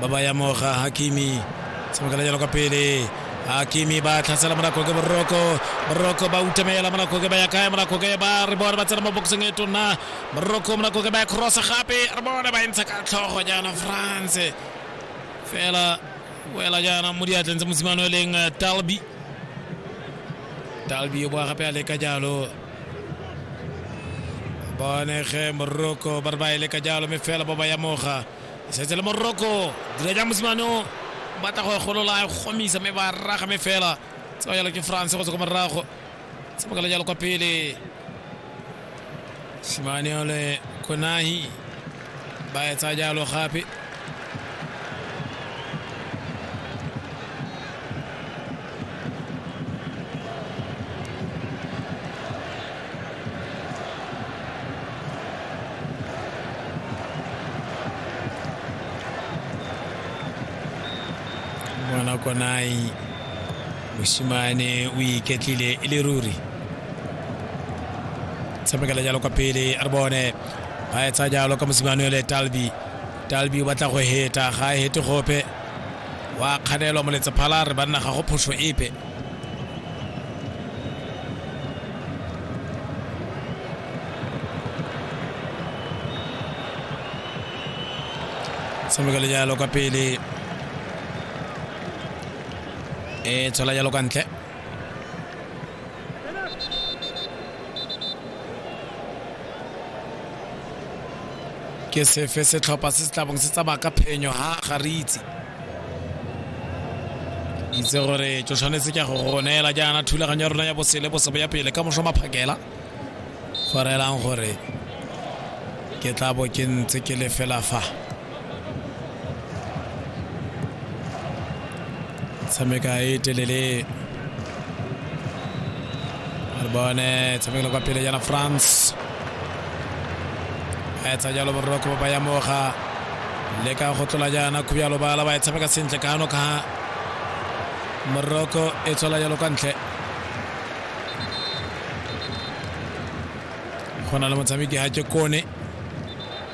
ba ba ya moga hakimi tshamekela jalo kwa pele hakimi ba tlhasela monakoke boroko boroko ba utamela monakoke ba ya kae monakoke ba re bone ba tsena mo boxeng e tona boroko monakoke ba ya cross gape re bone ba e ntsha ka tlhogo jaana france fela wela jaana mo diatleng tsa mosimane o leng eh, talby talby o boa gape a leka jalo bonege moroko ba re ba e leka jalo mme fela ba ba ya moga setse le moroko dira jang mosimane o batla go e golola e gomisa mme ba raga me fela tse ba jalo ke france go tswa ko morago se bokala jalo kwa pele simane ole konahi ba etsa jalo gape ngwana konai mosimane o iketlile e le ruri tshamekela jalo kwa pele a re bone ba etsa jalo ka mosimane ole talbi talbi o batla go heta ga a hete gope wa kganelwa moletsa phala re banna ga go phoso epe tshameka le jalo kwa pele e tshola jalo kwa ntle ke sefe setlhopha se se tlabong se tsamaya ka phenyo ha ga re itse itse gore tso tshwanetse ke go go neela jaana thulaganyo ya rona ya bosele bosebo ya pele ka moso maphakela go reelang gore ke tla bo ke ntse ke le fela fa tshameka e telele re bone tshamekelo kwa pele jana france a etsa jalo moroko ba ya moga le ka go tlola jaana khubjalo bala ba e tshameka sentle ka ano ka moroko e tswela jalo kwa ntle go na le motshameki ga ke kone